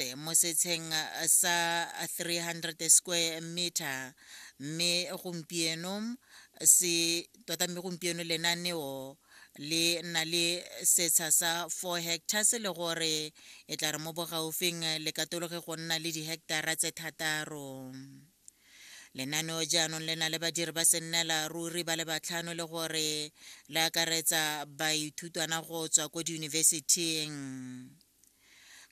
Motse mo setsheng sa 300 square meter mme gompieno se tota mme gompieno lenaneo le na le setsha sa 4 hectares le gore e tla re mo bogaufing le katologe go nna le diheketara tse thataro lenaneo jaanong le na le badiri ba sennela ruri ba le batlhano le gore le akaretsa baithutwana go tswa ko diyunibesithing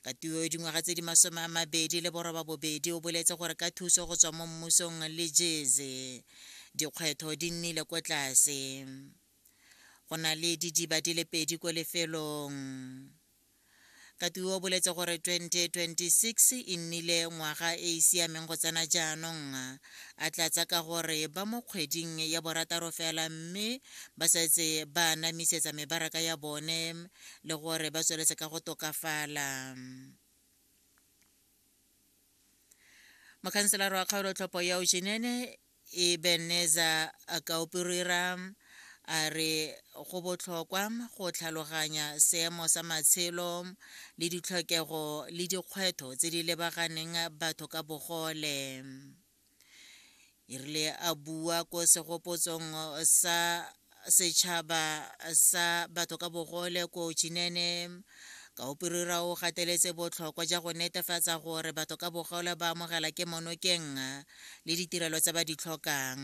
katiwa yo dingwaga tse di masome a mabedi le boroba bobedi o boletse gore ka thuso go tswa mo mmusong le jeze dikgwetho di nnile ko tlase go na le didiba di le pedi ko lefelong katiwa o boletse gore 2026 e nnile ngwaga e e siameng go tsena jaanong a tlatsa ka gore ba mo kgweding ya borataro fela mme ba setse ba anamisetsa mebaraka ya bone le gore ba tsweletse ka go tokafala mokhanselara wa kgaolotlhopho ya ojenene ebeneza kaopirira a re go botlhokwa go tlhaloganya seemo sa matshelo le ditlhokego le dikgwetlho tse di lebaganeng batho ka bogole e rile a bua ko segopotsong sa setšhaba sa batho ka bogole ko chinene ka operira o gateletse botlhokwa ja go netefatsa gore batho ka bogole ba amogela ke monokeng le ditirelo tse ba di tlhokang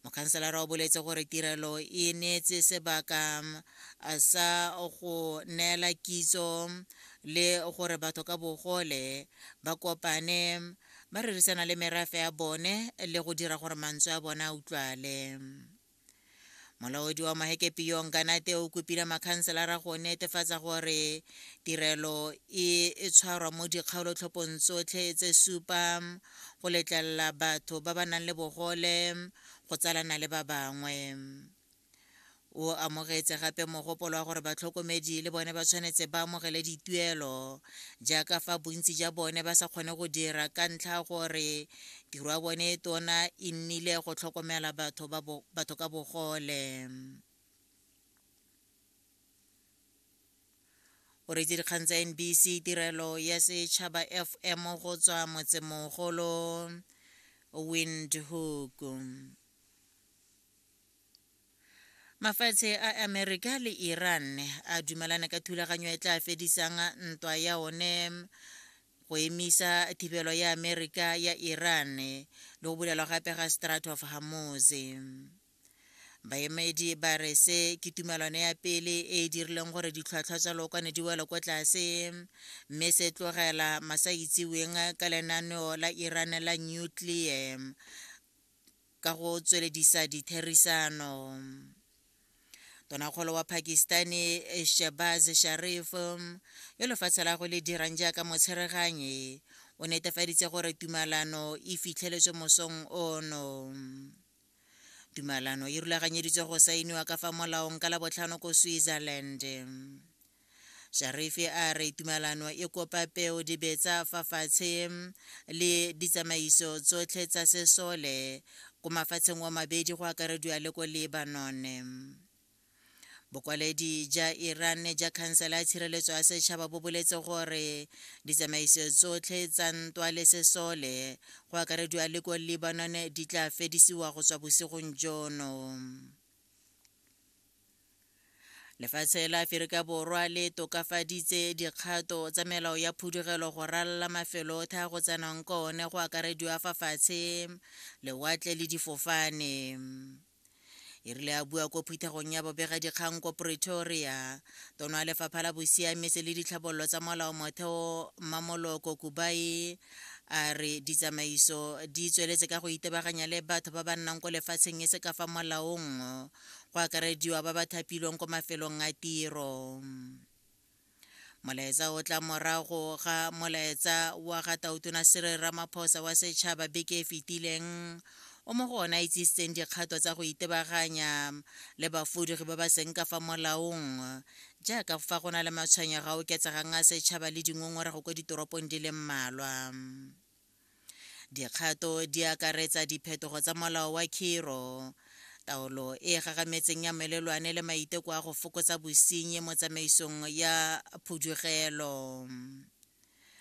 mokhanselara o boletse gore tirelo e neetse sebaka sa go neela kitso le gore batho ka bogole ba kopane ba rerisana le merafe ya bone le go dira gore mantswe a bone a utlwale molaodi wa mahekepi yo nkanate o kopile makhanselara go netefatsa gore tirelo e e tshwarwa mo dikgaolotlhophong tsotlhe tse supa go letlelela batho ba ba nang le bogole go tsalana le ba bangwe o amogetse gape mogopolo wa gore batlhokomedi le bone ba tshwanetse ba amogele dituelo jaaka fa bontsi ja bone ba sa kgone go dira ka ntlha gore Tiro ya bone e tona e nnile go tlhokomela batho, ba bo, batho ka bogole. o retse dikgang tsa nbc tirelo ya setšhaba fm go tswa motsemogolo windhoek mafatshe a amerika le iran a dumelana ka thulaganyo e tla fedisang ntwa ya one go emisa thibelo ya amerika ya iran le go bulelwa gape ga strat of hamoz baemedi ba re se ke tumelano ya pele e e dirileng gore ditlhwatlhwa tsa lookwane di wele ko tlase mme se tlogela masa itseweng ka lenaneo la iran la nuclear ka go tsweledisa ditherisano tonakgolo wa pakistani shebaz sharif yo lefatshe la go le dirang jaaka motshereganyi o netefaditse gore tumalano e fitlheletswe mosong ono tumalano e rulaganyeditswe go saeniwa ka fa molaong ka labotlhano ko switzerland Sharifi a re tumalano e kopa peo dibetsa fa fatshe le ditsamaiso tsotlhe tsa sesole ko mafatsheng wa mabedi go akarediwa le ko Lebanon. Bokwaledi ja Iran ja khansela ya tshireletso ya setšhaba bo boletse gore ditsamaiso tsotlhe tsa ntwa le sesole go akarediwa le ko Lebanon di tla fedisiwa go tswa bosigong jono. lefatshe la aferika borwa le tokafaditse dikgato tsa melao ya phudugelo go ralala mafelo otlhe a go tsenang ka one go akarediwa fa fatshe lewatle le difofane e rile a bua ko phuthegong ya bobega dikgang ko pretoria tono ya lefapha la bosiamisi le ditlhabololo tsa molao motheo mmamoloko kubai a re ditsamaiso di tsweletse ka go itebaganya le batho ba ba nnang ko lefatsheng e se ka fa molaong go akarediwa ba ba thapilweng ko mafelong a tiro molaetsa o tla morago ga molaetsa wa ga tautona sere ramaphosa wa setšhaba beke e fetileng o mo go ona itsisitseng dikgato tsa go itebaganya le bafudugi ba ba seng ka fa molaong jaaka fa go na le matshwenyego a oketsegang a setšhaba le dingongorego ko ditoropong di le mmalwa Dikgato di akaretsa diphetogo tsa molao wa khiro, taolo e e gagametseng ya melelwane le maiteko a go fokotsa bosenyi mo tsamaisong ya phudugelo.